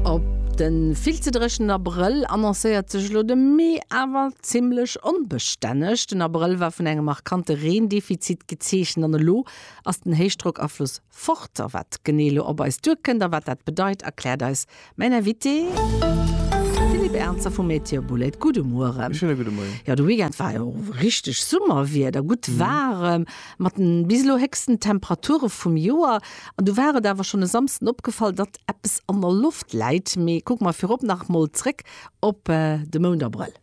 Op de vill ze dréchenen Abrëll annoncéiert sech elo de Mee awer zimmlech onbestänneg. Den Abrëll war vun engem markante Reendefizit gezeechent an elo ass den Héichdrockafloss fort. A wat genee elo op eis duerkënnt a wat dat bedeit, erkläert eis mäin Invité Philippe Ernzer vu Météo Boulaide. Gudde Mueren. Schöne gudde Moien. Jo, de Weekend war jo richteg Summerwieder, gutt waarem. Mat den bis elo héchsten Temperature vum Joer, an du war et awer schonn e Samsden opgefall, datt eppes an der Loft läit. Mee kucke mer virop nach emol zréck op de Mount Abrëll.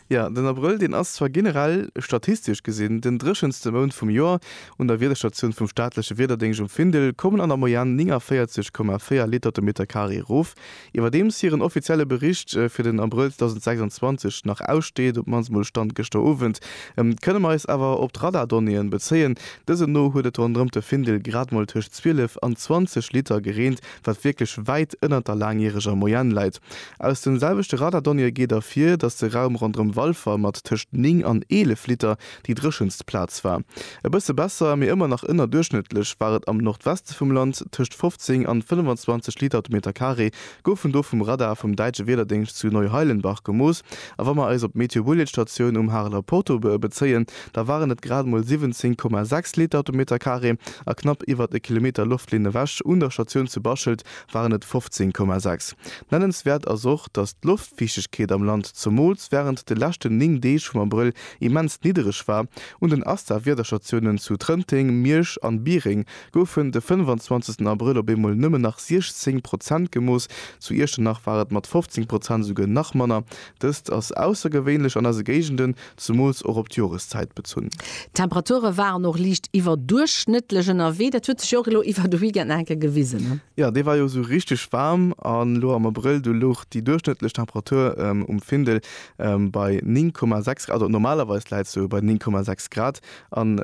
Jo, den Abrëll, deen ass zwar generell statistesch gesinn den dréchenste Mount vum Joer. Un der Wiederstatioun vum staatleche Wiederdéngscht um Findel kommen an der Moyenne 49,4 Liter de Metercarré erof. Iwwerdeems hiren offizielle Bericht fir den Abrëll 2026 nach aussteet, op d'mannst mol Stand gëschter Owend, kënne mer eis awer op d'Radardonnéeën bezéien. Dësen no huet et ronderëm de Findel grad mol tëscht 12 an 20 Liter gereent, wat wierklech wäit ënnert der laangjäreger Moyenne läit. Aus den selwechte Radardonnéeë geet ervir, datt de Raum ronderëm Walfer mat tëscht 9 an 11 Liter Déi dréchenst Plaz war e bësse besser, mee ëmmer nach ënnerduerchschnëttlech war et am Nordweste vum Land, tëscht 15 an 25 Liter de Meter Carré goufen do vum Radar vum däitsche Wiederdéngscht zu Neuheilenbach gemooss. A wa mer eis op d'Meteobulletstatioun um Hareler Porto be bezéien, da waren et grad emol 17,6 Liter de Meter Carré a knapp iwwert e Kilometer Loftlinn ewech un der Statioun zu Baschelt waren et 15,6. Nennenswäert ass och, datt d'Loftfiichtegkeet am Land zumools wärend de leschten 9 Deeg vum Abrëll immens niddereg war. Un den ASTA-Wiederstatiounen zu Trënteng, Miersch an Biereng goufen de 25 Abrëll op eemol nëmmen nach 16 Prozent gemooss, zu Iechternach war et mat 15 Prozent esouguer nach manner. Dëst ass aussergewéinlech an eise Géigenden, zemools och op d'Joreszäit bezunn. D'Temperature waren och liicht iwwerduerchschnëttlech ënnerwee, dat huet sech jo och elo iwwer de Weekend nach eng Kéier gewisen. Jo, dee war jo esou richteg waarm, an elo am Abrëll, do louch déi duerchschnëttlech Temperatur um Findel Bei 9,6 Grad, also normalerweis läit se bei 9,6 Grad an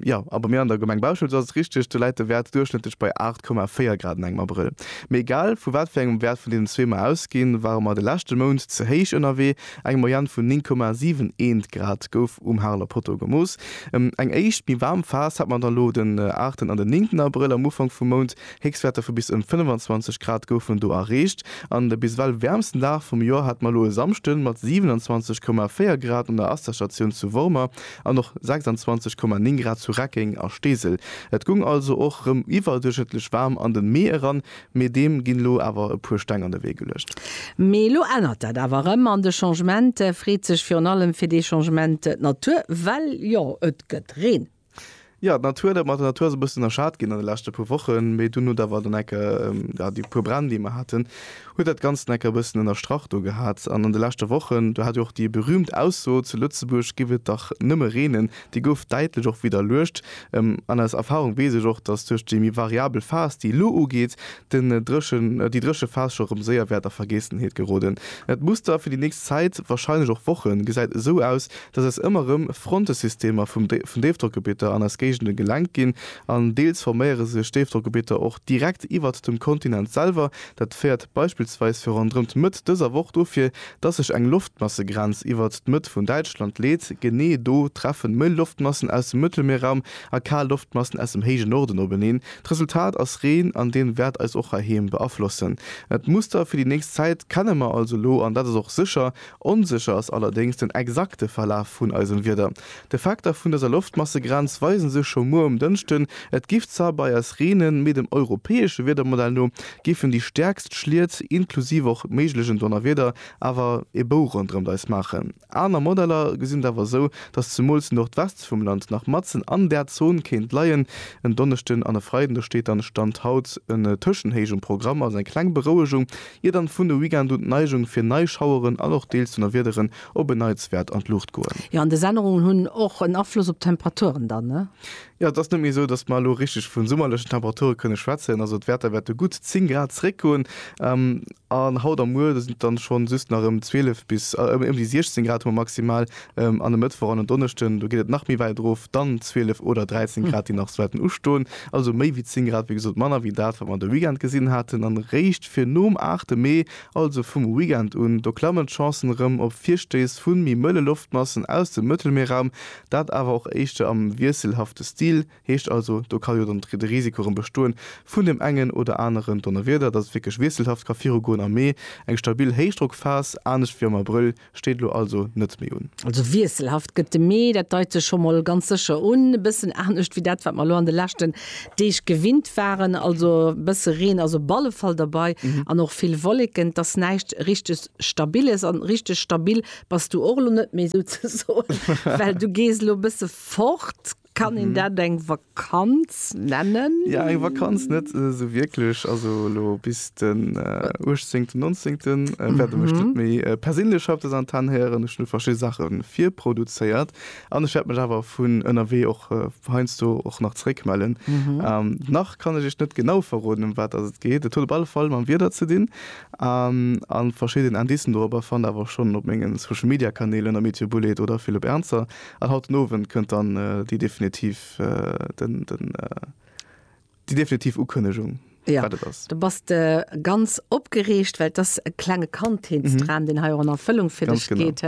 jo, a bei mir an der Gemeng Bauschelt ass et richteg, do läit de Wäert duerchschnëttlech bei 8,4 Grad an engem Abrëll. Mee egal vu wat fir engem Wäert vun deenen zwee mer ausginn, ware mer de leschte Mount ze héich ënnerwee. Eng Moyenne vun 9,71 Grad gouf um Hareler Poteau gemooss. Eng éischt méi waarm Phas hat mer dann elo den 8. an den 9. Abrëll am Ufank vum Mount, Héchstwäerter vu bis ëm 25 Grad goufen do erreecht an de bis ewell wäermsten Dag vum Joer hate mer elo e Samschden mat 27,4 Grad un der Asterstatioun zu Wormer an och 26,9 Grad zu Reckeng a Steesel. Et goung also och rëm iwwerduerchschnëttlech waarm an den Mee eran, mee deem ginn elo awer e puer Steng an de Wee geluecht. Mee elo ännert dat awer erëm an de Changement freet sech virun allem fir dee Changement d'Natur, well jo et gëtt Reen. Jo, d'Natur, dat mat der Natur ass e bëssen ënnerschat ginn an de leschte puer Wochen, mee dunn huet awer den Ecker, jo, déi puer Bränn, déi mer haten, huet dat Ganzt en Ecker e bëssen ënnerstrach do gehat. An an de leschte Wochen, do hat jo och déi berühmt Ausso, zu Lëtzebuerg giff et dach nëmme reenen, déi gouf däitlech och widderluecht. An aus Erfahrung weess ech och, dass duerch déi méi variabel Phas, déi elo ugeet, den Dréchen, déi dréche Phas scho rëm séier wäert a Vergiessenheet geroden. Dat Muster fir déi nächst Zäit, warscheinlech och Wochen, gesäit esou aus, dass eis ëmmer erëm Frontesystemer vum vun Déifdrockgebieter an eis Géigenden gelenkt ginn an deels forméiere sech Déifdrockgebieter och direkt iwwert dem Kontinent selwer. Dat féiert beispillsweis fir ronderëm d'Mëtt dëser Woch dofir, dass sech eng Loftmassegrenz iwwert d'Mëtt vun Däitschland leet. Genee do treffen mëll Loftmassen aus dem Mëttelmierraum a kal Loftmassen aus dem héije Norden openeen. D'Resultat ass Reen an deen wäert eis och heiheem beaflossen. D'Muster fir déi nächst Zäit kenne mer also elo an dat ass och sécher Onsécher ass allerdéngs den exakte Verlaf vun eisem Wieder. D'Effekter vun dëser Loftmassegrenz weise sech scho muer um Dënschden, et giff zwar bei eis reenen, mee dem europäesche Wiedermodell no giffen déi stäerkst Schliet, inklusiv och méiglegen Donnerwieder, awer e Bou ronderëmt eis maachen. Aner Modeller gesinn et awer esou, dass zemools de Nordweste vum Land nach matzen an där Zon kéint leien. En Donneschden an e Freiden, do steet dann, Stand haut, en Tëschenhéich um Programm, also eng kleng Berouegung ier dann vun de Weekend un d'Neigung fir nei Schaueren an och deels Donnerwiederen op en Neits wäert an d'Luucht goen. Jo, an des Ännerungen hunn och en Afloss op d'Temperaturen dann, ne? Jo, et ass net méi esou, dass mer elo richteg vun summerlechen Temperature kënne schwätzen. Also d'Wäerter wäerte gutt 10 Grad zeréckgoen an haut a muer sinn et dann schonn just nach ëm 12 bis ëm déi 16 Grad hu mer maximal An e Mëttwoch an en Donneschden, do geet et nach méi wäit erof, dann 12 oder 13 Grad, déi nach wäerten ustoen. Also méi wéi 10 Grad, wéi gesot manner wéi dat, wat mer de Weekend gesinn haten. An eréischt fir nom 8 Mee, also vum Weekend un, do klammen d'Chancen erëm op Virstéiss vu méi mëlle Loftmassen aus dem Mëttelmierraum, dat awer och éischter am wiesselhafte Stil. Heescht also, do ka jo dann de Risiko erëm bestoen vun deem engen oder aneren Donnerwieder, dass et wierklech wiesselhaft ka virugoen am Mee. Eng stabil Héichdrockphas, anescht wéi am Abrëll, steet elo also net méi un. Also wiesselhaft gëtt de Mee, dat deit sech scho mol ganz sécher un. E bëssen anescht wéi dat, wat mer elo an de leschten Deeg gewinnt waren. Also e bësse Reen ass op alle Fall derbei an och vill Wolleken. Et ass näischt richteg Stabiles an richteg stabil bass du och elo net méi souzesoen, well du gees elo e bësse fort. Kann een dat eng Vakanz nennen? Ja, eng Vakanz net äh, so wierklech. Also lo bis den äh, 18. 19. Äh, werde mech net méi äh, persinnlech op des Antenn héieren. Ech hun verschi Sache virproduzéiert an ech werd mech awer vun ënnerwee och äh, heinst du och nach zréckmellen. Mhm. Ähm, nach kann ech ech net genau verroden, um wat ass et geet. Et huet op alle Fall mam Wieder ze dinn ähm, an verschidden Indicen dorobber fannt awer schonn op mengen Social-Media-Kanälen am Meteobullet oder Philipp Ernzer. An haut den Owend kënnt dann déi definitiv, den, den, déi definitiv Ukënnegung, wat et ass. Jo, do bass de ganz opgereegt, well et ass e klenge Kandheetsdram, deen hei och an Erfëllung fir dech geet.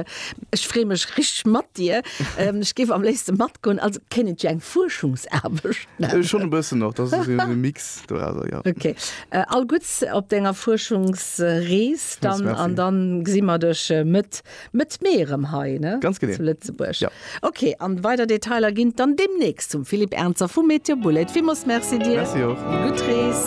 Ech freeë mech richteg mat dir. Ech géif am léifste matgoen. Also kéint et jo eng Fuerschungsaarbecht nennen. Schonn e bëssen och. Dat ass esou e Mix dorausser, jo. Okay. All Gudds op denger Fuerschungsrees dann. Merci. An da gesi mer dech Mëtt Mëtt Mee erëm hei, ne? Ganz genee. Zu Lëtzebuerg. Ja. Ok, an weider Detailer ginn et dann demnächst zum Philippe Ernzer vu Meteobullet. Villmools Merci dir. Merci och. Gutt Rees.